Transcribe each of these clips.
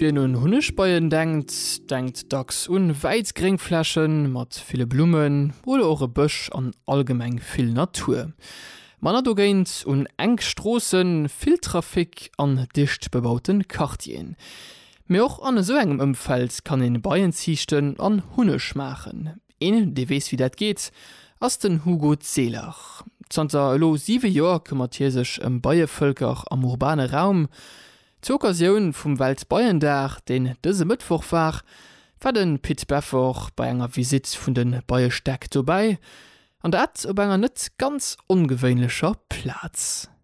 Wien un Hunnegbeien denkt, denkt dacks un wäiss Gréngfläche mat ville Blummen oder och e Bësch an allgemeng vill Natur. Manner dogéint un enk Stroossen, vill Trafic an dicht bebaute Quartieren. Mee och an esou engem Ëmfeld kann ee Beien ziichten an Hunneg maachen. Een, dee weess, wéi dat geet, ass den Hugo Zehler. Zanter elo siwe Joer këmmert hie sech ëm Beievëlker am urbane Raum. Zur Occasioun vum Weltbeiendag, deen dëse Mëttwoch war, war de Pit Beffort bei enger Visitt vun de Beiestäck dobäi, an dat op enger net ganz ongewéinlecher Plaz.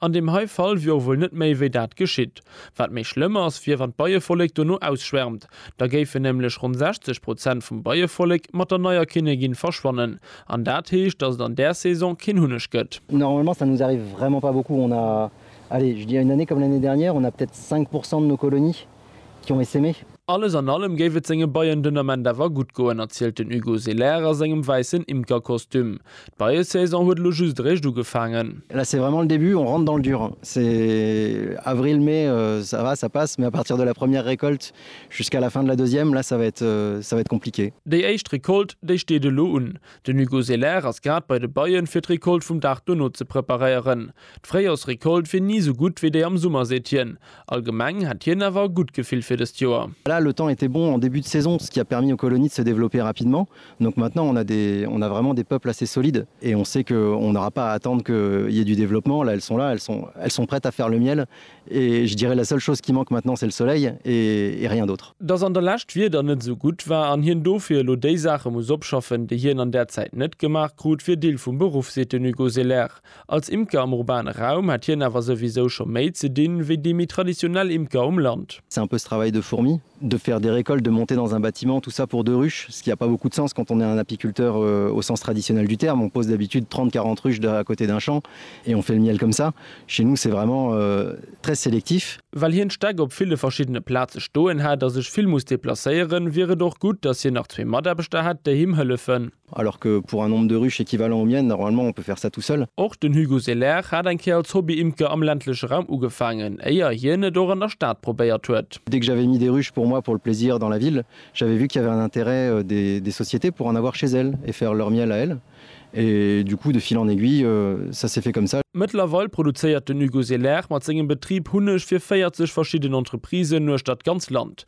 An deem hei Fall wier och wuel net méi wéi dat geschitt. Wat méi schlëmm ass, wier wann d'Beievollek dono ausschwärmt. Da géifen nämlech ronn 60 Prozent vum Beievollek mat der neier Kinnegin verschwannen. An dat heescht, dass et an där Saison keen Hunneg gëtt. Normalement ça nous arrive vraiment pas beaucoup, on a, allez je dirais une année comme l'année dernière, on a peut-être 5 pourcent de nos colonies. Junge si méi. Alles an allem géif et senge Beien den Ament awer gutt goen, erzielt den Hugo Selaire a sengem wäissen Imkerkostüm. D'Beiesaison huet elo just eréischt ugefaangen. Là c'est vraiment le début, on rentre dans le dur. C'est avril, mai, ça va, ça passe, mais à partir de la première récolte jusqu'à la fin de la deuxième, là ça va être, ça va être compliqué. Déi éischt Recolte, déi steet elo un. Den Hugo Selaire ass grad bei de Beien, fir d'Recolte vum Dag dono ze preparéieren. D'Fréijorsrecolte wier ni sou gutt wéi déi am Summer, seet hien. Allgemeng hätt hien awer e gutt Gefill fir dëst Joer. Voilà, le temps était bon en début de saison, ce qui a permis aux colonies de se développer rapidement. Donc maintenant on a des, on a vraiment des peuples assez solides et on sait que on n'aura pas à attendre qu'il y ait du développement. Là, elles sont là, elles sont, elles sont prêtes à faire le miel et je dirais la seule chose qui manque maintenant c'est le soleil et, et rien d'autre. Dass an der Lescht d'Wieder net esou gutt war an hien dofir elo déi Saache muss opschaffen, déi hien an där Zäit net gemaach krut, wier Deel vum Beruff, seet den Hugo Selaert. Als Imker am urbane Raum hätt hien awer souwisou scho méi ze dinn, wéi déi méi traditionell Imker um Land. C'est un peu ce travail de fourmi, de faire des récoltes, de monter dans un bâtiment, tout ça pour deux ruches, ce qui a pas beaucoup de sens quand on est un apiculteur au sens traditionnel du terme, on pose d'habitude 30-40 ruches à côté d'un champ et on fait le miel comme ça. Chez nous c'est vraiment très sélectif. Well hien d'Stäck op ville verschiddene Plaze stoen hätt a sech vill muss deplacéieren, wier et och gutt, datt hien nach zwee Mataarbechter hätt, déi him hëllefen. Alors que pour un nombre de ruches équivalent au mien, normalement, on peut faire ça tout seul. Och den Hugo Selaire hat eng Kéier als Hobby-Imker am ländleche Raum ugefaangen, éier hien et och an der Stad probéiert huet. Dès que j'avais mis des ruches pour moi pour le plaisir dans la ville, j'avais vu qu'il y avait un intérêt des sociétés pour en avoir chez elles et faire leur miel à elles. Et du coup, de fil en aiguille, ça s'est fait comme ça. Mëttlerweil produzéiert den Hugo Selaire mat sengem Betrib Hunneg fir 40 verschidden Entreprisen uechter d'ganz Land.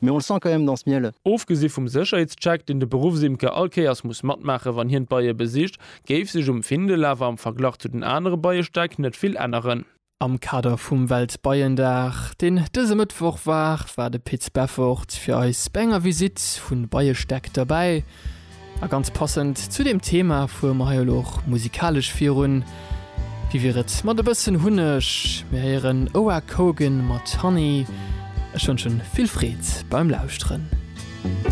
Mais on le sent quand même dans ce miel. Ofgesi vum Sécherheetscheck, deen de Beruffsimker all Kéiers muss matmaache wann hien d'Beie besicht, géif sech um Findel awer am Verglach zu den anere Beiestäck net vill änneren. Am Kader vum Weltbeiendag, deen dëse Mëttwoch war, war de Pit Beffort fir eis bei enger Visitt vun Beiestäck derbäi. A ganz passend zu deem Thema fuere mer hei elo och musikalesch virun. Wéi wier et mat e bëssen Hunneg? Mir héieren Oak Hogan mat Honey. Ech wënschen vill Freed beim Lauschteren.